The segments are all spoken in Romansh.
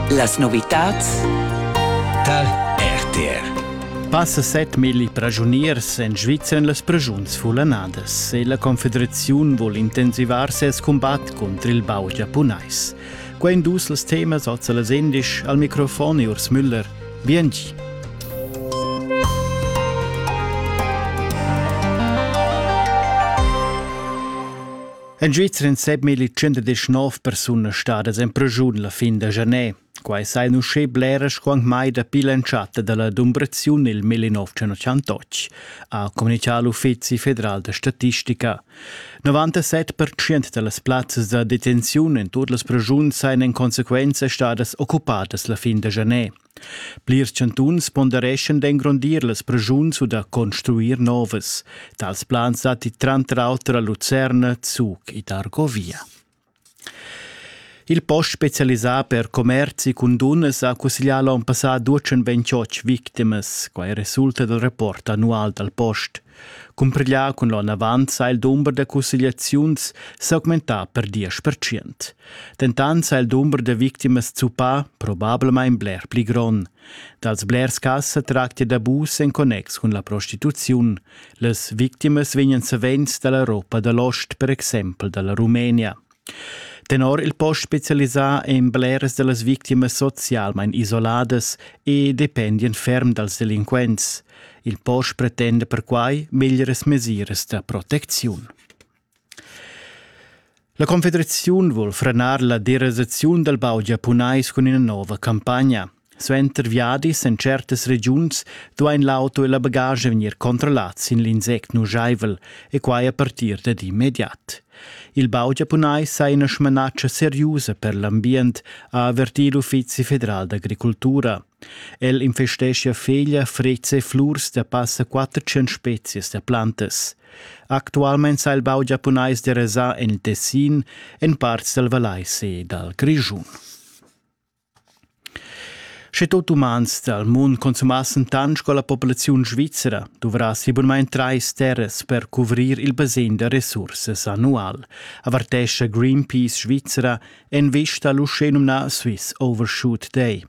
Las novitads tar RTR Passa set milli pragiuniers en Svizra en las pragiuns fulanadas e la Confederaziun vul intensivar ses combat cunter il bau giapunais. Quai en dus els temas als las indisch al microfon Urs Müller. Bienci. En Svizra èn 7.119 persunas stadas en pregiun la fin da janer. Quai sa in uschè bleras quant mai dapi l'entschatta da la dumbraziun nel 1988, ha communità l'Uffizi federal da statistica. 97% da las plazzas da detenziun en tut las pregiuns sajan in consequenza stadas occupadas la fin da janer. Plirs chantuns pondereschan d'engrondir las preschuns u da construir novas. Tals plans datti tranter auter a Lucerna, Zug ed Argovia. Il post specialisà per commerzi cun dunnas ha cusseglià l'onn passà 228 victimas. Quai resulta dal rapport annual dal post. Cumpriglià cun l'onavant sa il dumber da cussegliaziuns s'augmentà per diesch percent. Dentant sa il dumber da victimas zuppà probablamain bler pli grond. Dals blers cas sa tractia d'abus en connex cun la prostituziun. Las victimas vegnan savens da l'Europa da l'ost, per exempel da la Rumenia. Tenor il post specialisà èn bleras da las victimas socialmain isoladas e dependian ferm dals delinquents. Il post pretenda perquai meglieras mesiras da protecziun. La Confederaziun vul frenar la derasaziun dal baud giapunais cun ina nova campagna. Suenter viadis en certas regiuns duain l'auto e la bagaglia vegnir controllats sin l'insect nujaivel e quai a partir dad immediat. Il bau giapunais ha ina smanatscha seriusa per l'ambient, ha avertì l'Uffizi federal d'agricultura. El investeschia feglia, frezza e flurs da passa 400 spezias da plantas. Actualmein sa il bau giapunais derasà en il Tessin, en parts dal Valais e dal Grischun. Sche tot umans dal mund consumassen tant sco la populaziun svizra, duvrassi bunmain trais terras per cuvrir il basegn da resursas annual, avertescha Greenpeace Svizra en vista l'uschenumnà Swiss Overshoot Day.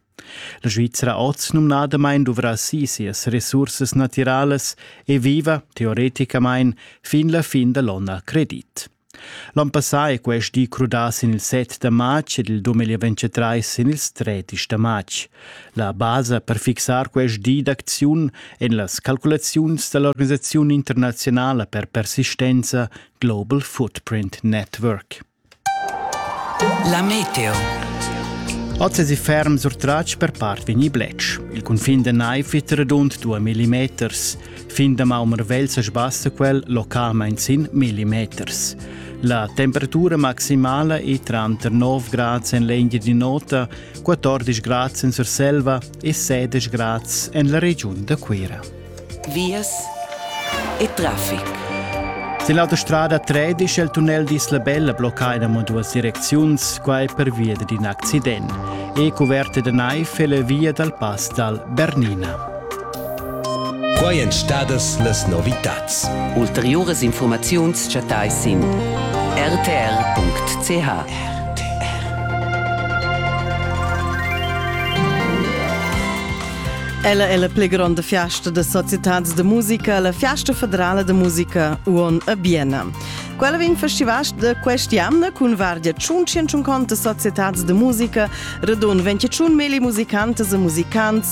La Svizra oz numnadamain duvrassi sias resursas natiralas e viva, teoreticamain, fin la fin da l'onn a credit. L'on passà è quest di crudà sin il 7 da matg ed il 2023 sin ils 30 da matg. La basa per fixar quest di d'acziun en las calculaziuns da l'organisaziun internaziunala per persistenza Global Footprint Network. La meteo. Oz è si ferm surtratg per part vegnì bletsch. Il cunfin da naiv è redund 2 mm. Fin damaun marvegl sa sbassa quel localmain sin millimeters. La temperatura maximala è tranter 9 grads en l'Engia di Nota, 14 grads en Surselva e 16 grads en la regiun da Cuira. Vias e traffic. Sin l'autostrada 13 è il tunnel d'Isla Bella bloccato in duas direcziuns, quai pervia d'un accident. È coperta da naiv è la via dal pass dal Bernina. Quai èn stadas las novitads. Ulteriuras infurmaziuns chattais sin rtr.ch. Ella è la pli gronda fiasta da societad da musica, la Fiasta federala da musica Uon a Bienna. Quella vegn festivas da quest'anna cun vardia 150 societads da musica, radun 21 meli musicantas e musicants,